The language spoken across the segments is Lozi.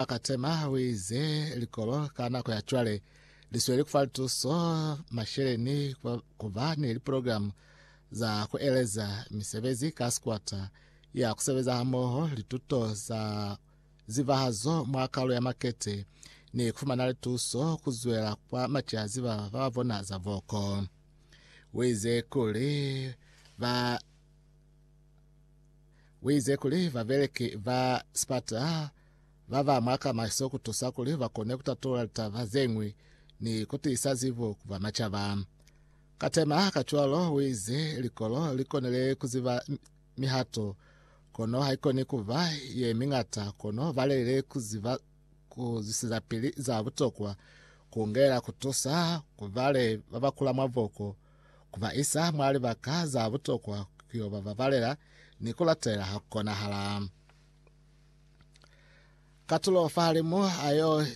A ka tema huize likolo ka nako ya cwale li sweli kufa lituso masheleni ku ba ni liprogramu za ku eleza misebezi ka sikwata ya ku sebeza hamoho, lituto za zivahazo mwa kalu ya makete, ni ku fumana lituso ku zwela kwa maciazi ba ba ba bona za voko. Huize kuli ba Uize kuli babeleki ba sipata baba mwaka maso kutusa kuli bakone kutatulula litaba zeñwi ni kutiisa zibo ku bamacaba. Ka tema kacwalo, uize likolo likonile kuziba mihato, kono haikoni kuba yemiñata, kono balelile kuziba kuzwisizapili za butokwa kungela kutusa ku bale babakula mwaboko, Ku ba isa mwa libaka za butokwa ku yo ba babalela ni ku latela ha ku konahala. Katulo fahalimu a yo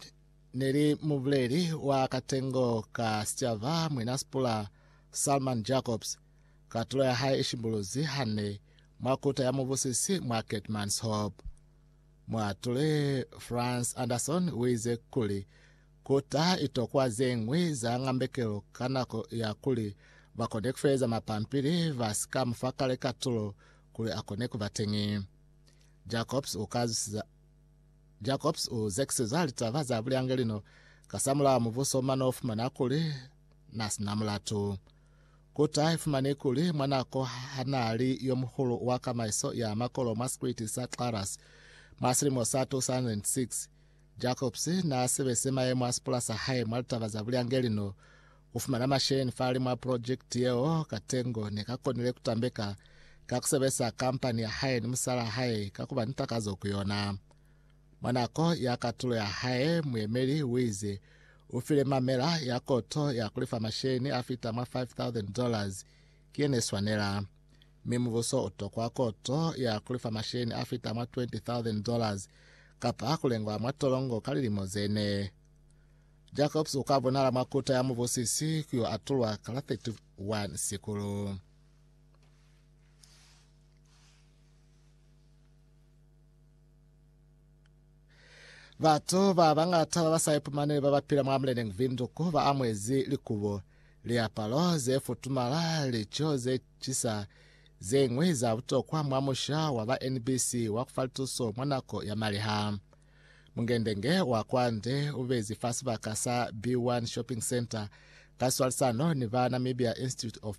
ne li mubuleli wa katengo ka sicaba Mwina Sipula Salman Jacobs. Katulo ya hae i shimbuluzi hande mwa kuta ya mubusisi mwa Keetmanshoop. Muatuli Frans Anderson u ize kuli, Ku ta itokwa ze ñwi za ngambekelo ka nako ya kuli ba kone ku feeza mapampili ba si ka mu fa kale katulo kuli a kone ku ba teñi. Jacobs u ka zwisiza Jacobs u zekiseza litaba za bulyange lino kasamulaho mubuso mwa n'o fumana kuli n'a si na mulatu. Ku ta ifumani kuli mwa nako ha n'a li yo muhulu wa kamaiso ya makolo mwa sikwiti sa Claras mwa silimo sa 2006, Jacobs naa sebese mayemo a sipula sa hae mwa litaba za bulyangeli no u fumana masheleñi fahali mwa pulojekiti yeo. Katengo ne ka konile ku tambeka ka ku sebesa kampani ya hae ni musalaa hae ka ku ba ni takazo ku yona. Mwa nako ya katulo ya hae, muyemeli u ize u file mamela ya koto ya ku lifa masheleñi a fita mwa 5,000 dollars ki ye ne swanela. mi mubuso utokwa koto ya kulifa masheni afita mwa 20,000 dollars kapa kulengwa mwa tolongo ka lilimo zene. Jacobs uka bonala mwa kuta ya mubusisi kuyo atulwa kala 31 Sikulu. Batu ba bañata ba ba sa ipumaneli ba ba pila mwa Mleneng Windhoek ba amuezi likubo, liapalo ze futumala, lico ze cisa, ze ñwi za butokwa mwa musha wa ba NBC wa ku fa lituso mwa nako ya maliha. Mungendenge wa kwande u bezi fa sibaka sa B1 Shopping Centre ka swalisano ni ba Namibia Institute of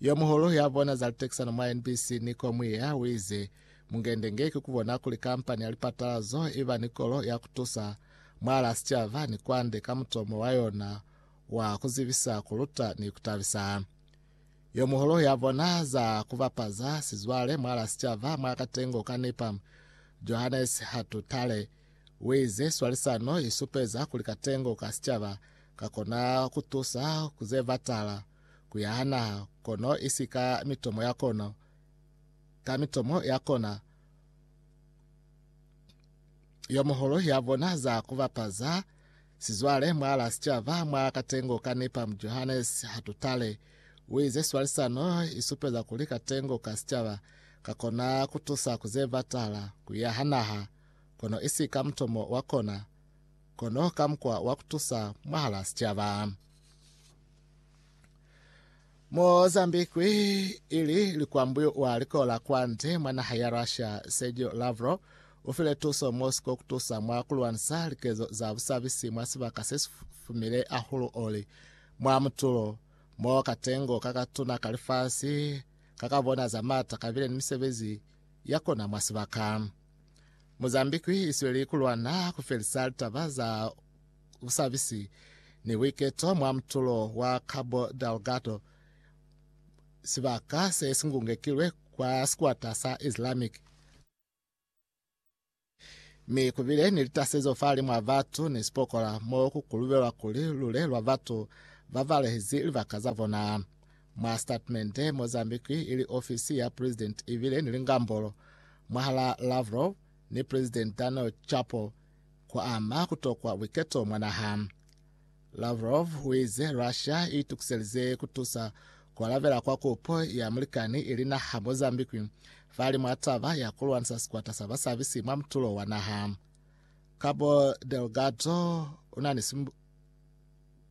Yomuhulu ya bona za litekisano mwa NBC, Nico Mwiya, uize, Mungende nge ki kubona kuli kampani ya lipatalazo iba ni kolo ya kutusa mwala sicaba ni kwande ka mutomo wa yona wa kuzibisa, kuluta, ni kutabisa. Yomuhulu ya bona za kubapaza sizwale mwala sicaba mwa katengo ka Nipam, Johannes Hatutale, uize, Swalisano isupeza kuli katengo ka sicaba kakona kutusa kuzebatala, ku ya ha naha, kono isi ka mitomo ya kona, ka mitomo ya kona yo muhulu ya bona za ku bapaza sizwale mwa la sicaba mwa katengo ka nipa mu Johannes Hatutale uize swalisano isupeza kuli katengo ka sicaba ka kona ku tusa ku ze batala ku ya ha naha, kono isi ka mutomo wa kona, kono ka mukwa wa ku tusa mwahala sicaba. Mozambique ili likwambwi wa likola kwande mwa naha ya Russia Sergio Lavrov ufile tuso Moscow kutusa mwa kulwanisa likezo za busabisi mwa sibaka sesifumile ahulu oli mwa mutulo mo katengo kakatuna ka lifasi kakabona za mata kabile ni misebezi ya kona mwa sibaka. Mozambique isweli kulwana kufelisa litaba za busabisi ni buiketo mwa mutulo wa Cabo Delgado, sibaka se si ngungekilwe kwa sikwata sa Islamic, mi ku bile ni litasezo fahali mwa batu ni sipokola mo ku kulubelwa kuli lule lwa batu ba balehezi libaka za bona. Mwa sitatimende, Mozambique ili ofisi ya Presidenti ibile ni lingambolo mwahalaa Lavrov ni Presidenti Daniel Chapo, ku ama ku tokwa buiketo mwa naha. Lavrov uize Russia i itukiselize ku tusa ku alabela kwa kupo ya mulikani ili naha Mozambique fali mwa taba ya ku lwanisa sikwata sa basabisi mwa mutulo wa naha. Cabo Delgado una ni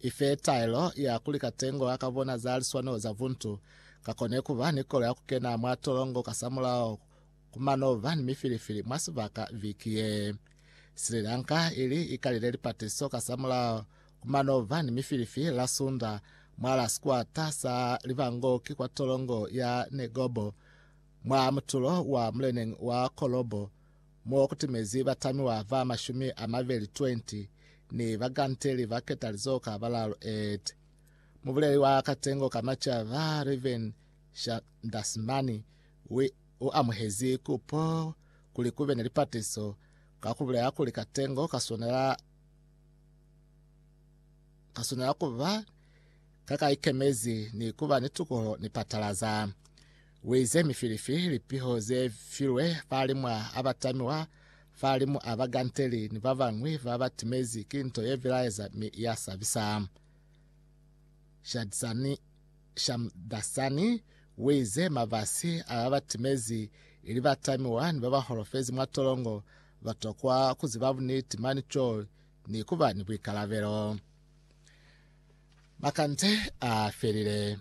I fe taelo ya kuli katengo a ka bona za liswanelo za buntu ka kone ku ba ni kolo ya ku kena mwa tolongo kasamulaho ku mano ba ni mifilifili mwa sibaka viki ye. Sri Lanka ili i kalile lipatiso kasamulaho ku mano ba ni mifilifili la Sunda mwa la sikwata sa libangoki kwa tolongo ya Negobo mwa mutulo wa muleneng wa Colombo, mo kutimezi batamiwa ba mashumi a mabeli 20 ni bakanteli ba ketalizo ka balalu et. Mubuleli wa katengo ka maca ba Reuven Shandasmani wi u amuhezi kupo kuli kube ni lipatiso ka kubulela kuli katengo ka swanela ka swanela kuba ka ka ikemezi ni kuba ni tukuho ni patalaza. Ueze mifilifi, lipiho ze filwe falimwa aba tamiwa falimu aba ganteli ni babañwi ba ba timezi ki nto ye bilaeza mi ya sabisa. Shadzani Shamdasani uize mabasi a ba ba timezi ili ba tamiwa ni ba ba holofezi mwa tolongo ba tokwa ku ziba buniti mani co ni ku ba ni buikalabelo. Makande a felile.